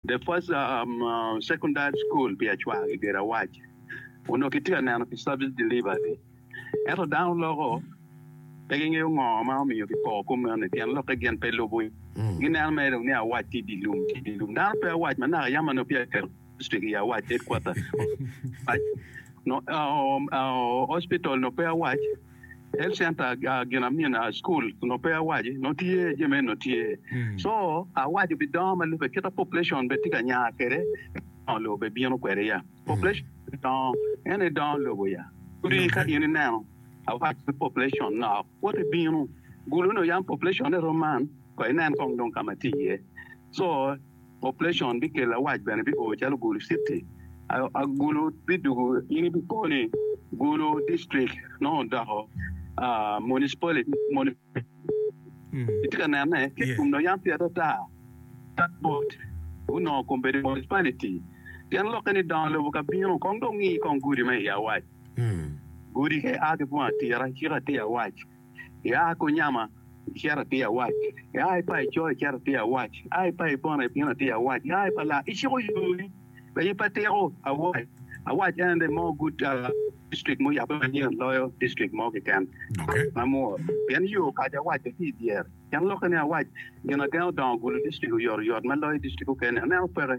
The first secondary school pi acwar i Girawac onongo kitye ka neno pi service delivery ento dano loko pe gingeyo ngo ma omiyo kipoko kom meno ni tyen lokke gin pe lubo gineno mere dong ni Awac tye idye lum tye idye lum dano pe Awac ma naka yam ma nongo peya kiketo district i Awac headquarter hospital nongo pe Awac. health center gin amin school onongo pe awaci onongo tye jami eni onongo tye co awaco pi dongo ma lube kita population bene tye ka nya kwede dongo lobo bene bino kwede ya population dongo en aye dongo lobo ya odi ka in ineno awaco ni population nok woti bino gulu ni yam population-ne rom man wek inen kong dong ka ma tye iye co Operation bikelo awac bene bi oo calo gulu city a gulu bidugu in ibi ko ni gulu district nongo doko municipality municipality itye ka nene ki i kom dong yam tye adada tap bot gunongo kom bedo municipality pien lokke ni dongo lobo ka bino kong dong ngi kong gudi me i awac gudi ka i a ki bunga tira cika tye i awac. Ia ki onyama, icit atye awac, ia ki pa ico, icit atye awac, ia ki pa ibona ibino atye awac, ia ki pa laa, iciko yoni, pe ipe tiko, awac, awac en aye mo good district ma oyabbe manyen loyo district mo keken ma amwor, pien yo okaco awac bene tye idyer, pien lokke ni awac gin agen odongo ogulu district oyotoyot ma loyo district mukene, aneno peke.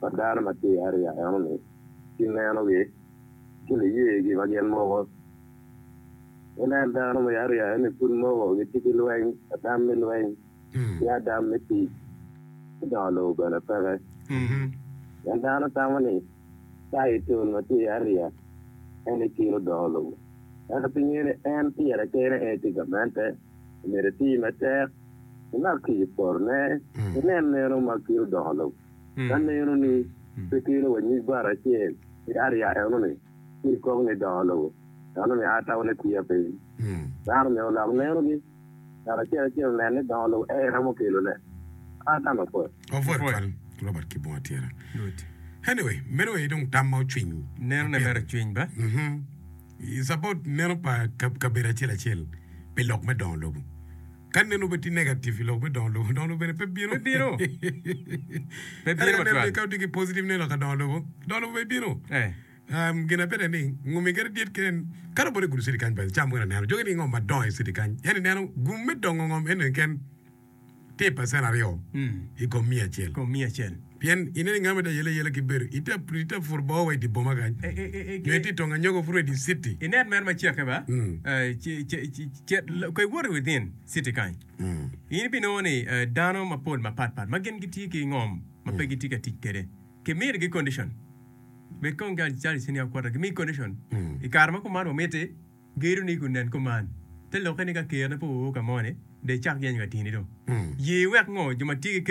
pa dano ma tye i ariya eno-ni ki nenogi ki niyegi ma gin moko. Inen dano me ariya eno-ni pud moko gitye ki lweny, adam me lweny ki adam me tic ki dongo lobo bene peke. Pien dano tamo ni taitol ma tye i ariya eno-ni kelo dongo lobo. Ento pingo in en tira kene en itye gamente? omyero iti matek imak ki i porone, inen neno ma kite odoko lok ka neno-ni pe kelo wa nyig bati acel ki ariya eno-ni, ci ikok ni doko lobo eno-ni a tawone kwiya piny. Dano myero olok neno-gi, ngat acel acel onen ni doko lobo aye romo kelone a tamo pwod. Cabot neno pa kabedo acel acel pi lok me dongo lobo. Ka neno obed tye negative pi lok me dongo lobo, dongo lobo bene pe bino. Pe bino. Pe bino matwal. Kare ka otye ki positive ne lok ka dongo lobo, dongo lobo pe bino. Eh. Um, gin abed ni ngumi gere dit kene ka robote gudo city kany ba cam mukene neno joge ni ngom madongo i city kany yani neno gum me dongo ngom ene ken Ti pacen aryo i kom miya acel. Pien ineno i ngama ita yeleyele ki bedo ita pur bor wa i di boma kany, nyo ita i tong anyogo puro i di citi. Inen mere macake ba, cet ka iwoto i within citi kany, in ibinongo ni dano mapol mapat pat ma gin gitye ki ngom ma pe gitye ka tic kwede, kimiti gi condition. Bed kong calo icen yam kwota, gimiyi condition i kare ma kuman wamiti. Gedo ni kun nen kuman. Te lokke ni ka Kerna pe oor ka moni, dong icak yeny ka tini dong. Ye iwek ngo jo ma tye ki ker?